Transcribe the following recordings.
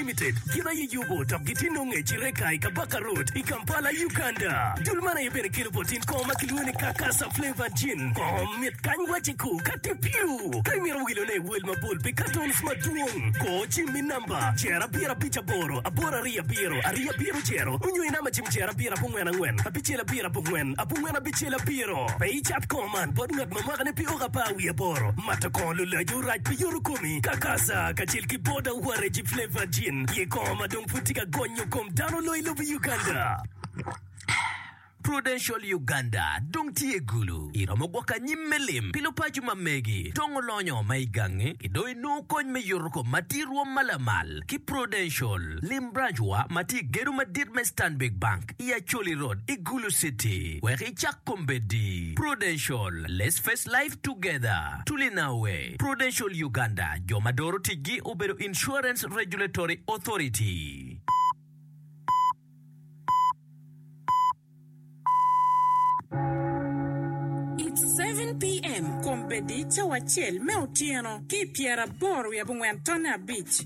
Limited gin aye yubo dok gitye nongo i Kireka i Kabaka Road i Kampala, Uganda. Dul man aye bene kelo botin kongo ma kilwongo ni Kakasa Flavored Gin. Kongo mit kany waci ku ka tye piu. Ka imito wilone i wel mabol pi katons madwong, kor cim i namba Cer abiro abic aboro aboro ariyo abiro ariyo abiro cero onyo i namba cim Cer abiro abongwen angwen abicel abiro abongwen abongwen abicel abiro. Pe icat kongo man bot ngat ma mwakane pe oko apar wiye aboro. Mato kongo lulac orac pi yoto komi. Kakasa kacel ki. Boda ware Jeep Flavor Gin ye kongo ma dong pud tye ka gonyo kom dano loyo i lobo Uganda. Prudential Uganda dong tye i gulu, iromo gwoko anyim me lim pi lupaco ma megi dong olonyo ma i gangi ki dong inongo kony me yuto kom ma tye i rwom ma lamal ki Prudential. Lim branch wa ma tye i gedo madit me Stanbic Bank. i Acholi Road i Gulu City wek icak kombeddi, Prudential, Let's Face Life Together, Tulinawe, Prudential Uganda, jo ma doro ticgi obedo Insurance Regulatory Authority. It's seven PM, Kombeddi, Cawa acel me otyeno ki i pyeraboro wiye abongwen tonne abic.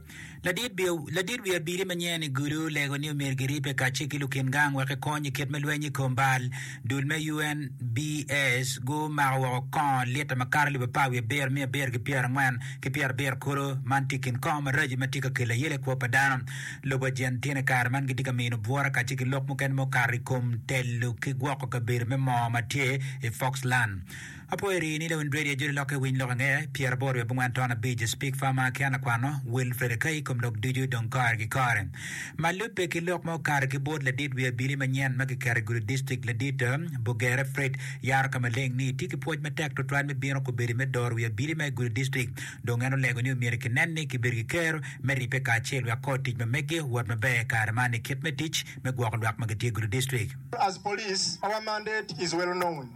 Ladit wi abili ma nyinge ni Gudu olego ni omyero giripe kacel ki lukin gang wek kikony i kit me lweny i kom bal. Dul me UNBS gumako woko kongo lita makato alip apar wiye abiro miya abiro ki pyera angwen ki pyera abiro kulu. Man tye kin kongo maraco ma tye ka kelo ayele ikwo pa dano. Lobo Argentina ikare man gitye ka mino bwura kacel ki lok mukene mukato ikom telo ki gwoko kabedo me moo matye i Foxland. Apwoyo rii ni lewin dread ya jodi lokke winy lok ange pyer aboro wiye abongwen ton abic is pig farmer aki an akwano will fred akai ikom lok ducu dong kore ki kore ma lube ki lok ma okato ki board ladit wi abili manyen ma kiketo i gudi district ladit bogere fred yaro ka maleng ni tye ki pwoc matek twatwal me bino kubedi me doro wi abili ma i gudi district dong en olego ni omyero ki nen ni ki bedo ki kero me ripe kacel wek kor tic ma megi owot maber i kare man i kit me tic me gwoko lwak ma gitye i gudi district. As police our mandate is well known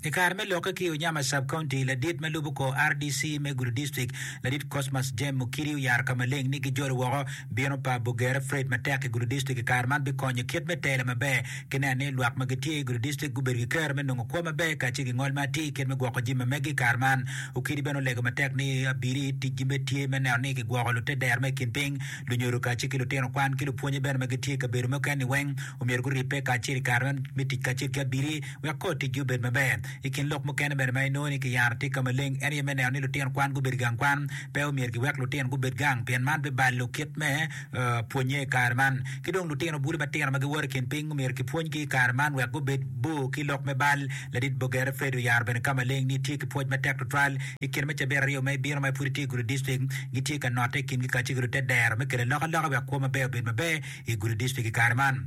I kare me lokke ki i Unyama Sub-County, ladit ma lubo kor rdc me Gulu District, ladit Cosmas Jem Mukiri oyaro ka maleng ni gijolo woko bino pa Bugere Fred matek i Gulu District i kare man bikonyo kit me telo maber ki neno ni lwak ma gitye i Gulu District gubedo ki kero me nongo kwo maber kacel ki ngol ma atir kit me gwoko jami ma megi i kare man. Ukiri bene olego matek ni abili ticgi bene tye me neno ni kigwoko lute dero ma i kin piny, lunyodo kacel ki lutino kwan ki lupwonye bene ma gitye i kabedo mukene-ni weng omyero guribbe kacel i kare me tic kacel ki abili. Wek kor ticgi obed maber, i kin lok mukene bene ma inongo ni kiyaro tika maleng en aye me neno ni lutino kwan gubedo i gang kwan. Pe omyero giwek lutino gubed gang pien man bibalo kit me pwonnye i kare man. Ki dong lutino bulu matino ma giwoto i kin piny omyero kipwonygi i kare man wek gubed bor ki lok me bal. Ladit Boger Fred oyaro bene ka maleng ni tye ki pwoc matek tutwal i kine ma cabit aryo ma ibino ma pud itye i gudo dictrict gitye ka notte i kingi kacel ki lute dero me kelo alokaloka wek kwo maber obed maber i gudo dictrict i kare man.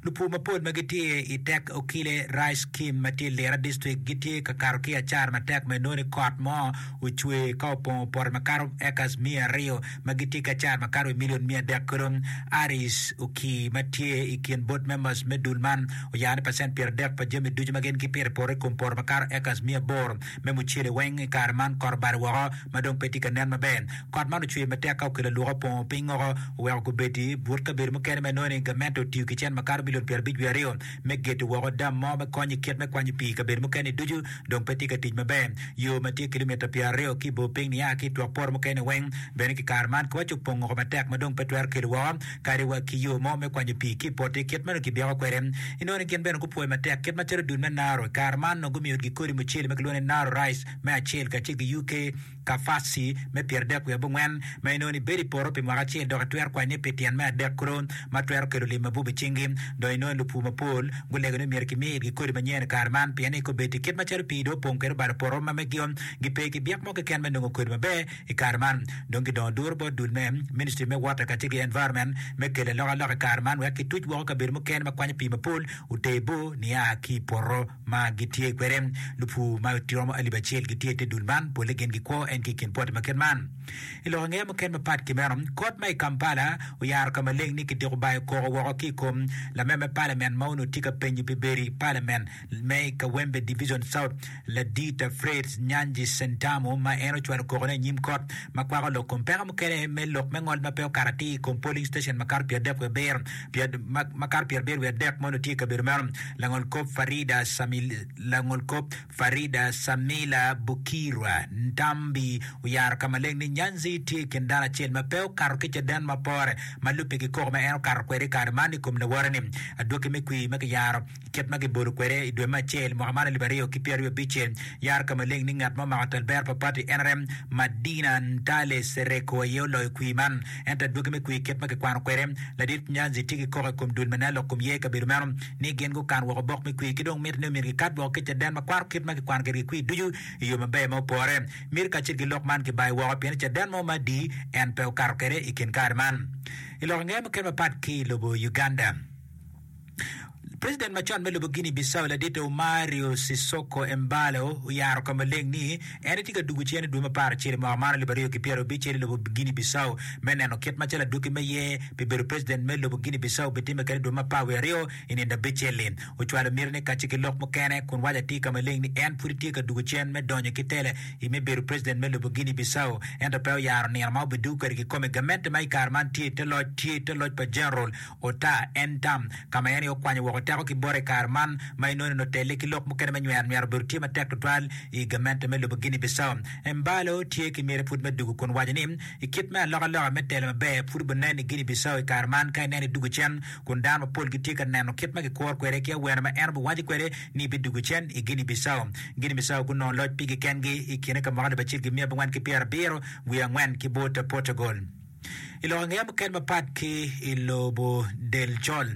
Lupur mapol ma gitye i tek okile Rice Kim ma tye i Lira District gitye ka kato ki acara matek ma inongo ni kot mo ocwer ka opongo poto makato acres miya aryo ma gitye ki acara makato i million miya adek kulu. Aris Okii ma tye i kin board members me dul man oyaro ni pacent pyeradek pa jami ducu ma gin gipito i poto i kom poto makato acres miya aboro Me mucele weng i kare man kot obalo woko ma dong pe tye ka nen maber. Kot man ocwer matek ka okelo aluka opongo piny woko, oweko kubeddi but kabedo mukene ma inongo ni gamente otiyo ki cen ma kato milion pyerabic wiye aryo me gedo woko dam mo me kony i kit me kwanyo pii i kabedo mukene-ni ducu dong pe tye ka tic maber. Yo ma tye kilimita pyeraryo ki i bor piny niaa ki i twok poto mukene weng bene ki kare man kiwaco opong oko matek ma dong pe twero kelo woko kadi wa ki yo mo me kwanyo pii ki i poti, kit ma nongo kibyeko kwede. Inongo ni gin bene gupwoyo matek kit macalo dul me Naro. I kare man, nongo gumiyo utgi kodi mucele ma kilwongo ni Naro rice me acel kacel ki UK Kafasi me pyeradek wiye abongwen, ma inongo ni bedo i poto pi mwaka acel dok itwero kwanye pi tyen me adek kuro ma twero kelo lim mabup i cingi. Dong inongo ni lupur mapol gulego ni myero kimi itgi kodi manyen i kare man pien ni kobedi kit macalo pii dong opong kwede obalo poto ma megio, gipe ki byek mo keken me nongo kodi maber. I kare man, dong kidongo duru bot dul me Ministry me Water kacel ki Environment me kelo alokaloka i kare man wek kituc woko kabedo mukene ma kwanyo pii mapol oter bor nia ki i poto ma gitye kwede. Lupur ma romo alip acel gitye i te dul man, polle gin gikwo en ki i kin poti ma kit man. I lok angeya mukene mapat ki meno, kot ma i Kampala oyaro ka maleng ni kidiko bayo koko woko ki i kom lameme palamen ma onongo tye ka penyo pi bedo i palamen Me i Kawempe Division South, Ladita Fritz Nyanzi Sentamu ma en ocwalo kokone i nyim kot ma kwako lok kom peko mukene me lok me ngol ma pe okato atir i kom polling station makato pyerabiryo wiye abiro pyera- ma- makato pyerabiryo wiye adek ma onongo tye i kabedo meno. Langol kop Farida Samil- langol kop Farida Samila Bukirwa Ntambi oyaro ka maleng ni Nyanzi tye i kin dano acel ma pe okato ki caden ma pore ma lubbe ki koko ma en okato kwede i kare man i kom lawote-ni. Adwoki me kwir ma kiyaro Kit ma gibodo kwede i dwe me acel mwaka man alip aryo ki pyeraryo abicce, yar ka maleng ni ngat ma omako talbera pa pati NRM, Madina Ntale Sereko aye oloyo kwir man. Ento adwogi me kwir kit ma kikwano kwede, Ladit Nyanzi tye ki koko i kom dul ma nen lok kom ye i kabedo meno ni gin gukan woko bok me kwir ki dong miti ni omyero gikat woko ki caden ma kwaro kit ma kikwano kwedgi kwir ducu i yo maber ma opore. Miti kacel ki lok man kibayo woko pien ni caden mo ma adi en pe okato kwede i kin kare man. I lok angeye mukene mapat ki i lobo Uganda, President macon me lobo Guinea Bissau ladite Umario Sissoko Embalo oyaro ka maleng ni en etye ka dugo cen i dwe me apar acel i mwaka man alip aryo ki pyera obic cel i lobo Guinea Bissau me neno kit macalo adwogi me ye pi bedo president me lobo Guinea Bissau bitimme kede i dwe me apar wiye aryo i nindo abicel-li. Ocwalo miti ne kacce ki lok mukene kun waco atir ka maleng ni en pud etye ka dugo cen me donyo ki tela i me bedo president me lobo Guinea Bissau ento pe oyaro nino ma obidugo kwede kikome. Gamente ma i kare man tye i te loc tye i te loc pa General Ota, en tam, ka ma en aye okwanyo woko teko ki bota i kare man, ma inononi otelle ki lok mukene me nywero nywero obedo tye matek tutwal i gamente me lobo Guinea Bissau. Embalo tye ki miti pud me dugu kun waco ni, I kit me alokaloka me telo maber pud obunen i Guinea Bissau i kare man ka ineno idugu cen kun dano mapol gitye ka neno kit ma kikuro kwede ki awene ma en obiwaco kwede ni bidugu cen i Guinea Bissau. Guinea Bissau gunongo loc pigi kengi i kine ka mwaka alip acel gi miya abongwen ki pyerabiro wiye angwen ki bot Portugal. I lok angeya mukene mapat ki i lobo del col,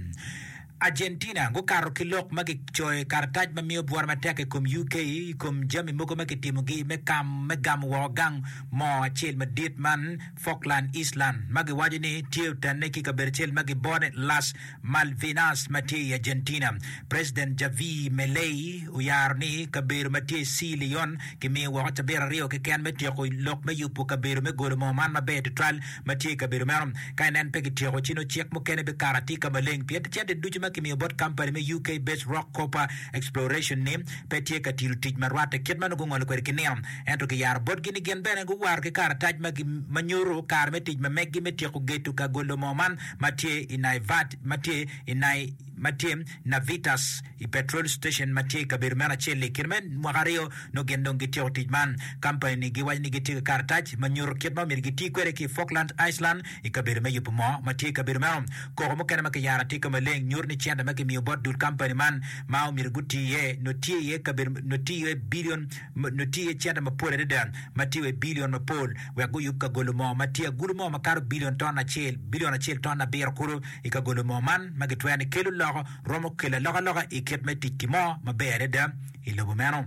Argentina gukato ki lok ma gicoyo i karatac ma miyo bworo matek i kom UK i kom jami mogo ma kitimogi me kam me gamo woko gang moo acel madit man Falkland Island ma giwaco ni tye otenne ki i kabedo acel ma gibone Las Malvinas ma tye i Argentina. President Javier Milei oyaro ni kabedo ma tye i Sea Leone kimiyo woko cabit aryo keken me tyeko lok me yubo kabedo me golo moo man maber tutwal ma tye i kabedo meno. Ka nen pe kityeko ci nongo cik mukene bikato atika maleng pien cente ducu ma kimiyo bot kampani me UK-based Rock Copper Exploration ni pe tye ka tito tic marwatte kit ma nongo gungolo kwede ki nino. Ento kiyaro botgi ni gin bene guwaro ki karatac ma nyuto kare me tic ma meggi me tyeko geto ka golo moo man ma tye i Naivat ma tye i Nai ma tye Navitas i petrol station ma tye i kabedo meno acel-li. I kine me mwaka aryo nongo gin dong gityeko tic man. Kampani-ni giwaco ni gitye ki karatac ma nyuto kit ma omyero giti kwede ki i Falkland Island i kabedo me yubo moo ma tye i kabedo meno. Koko mukene ma kiyaro atika maleng nyuto ni cente ma kimiyo bot dul kampani man ma omyero guti iye nongo tye iye bilion nongo tye cente mapol adada ma tye wa i bilion mapol wek guyub kagolo mo ma tye agulu mo makato bilion ton acel, bilion acel ton abiro kulu, i kagolo mo man ma gitwero ni kelo loko, romo kelo alokaloka i kit me tic-ki mo maber adada i lobo meno.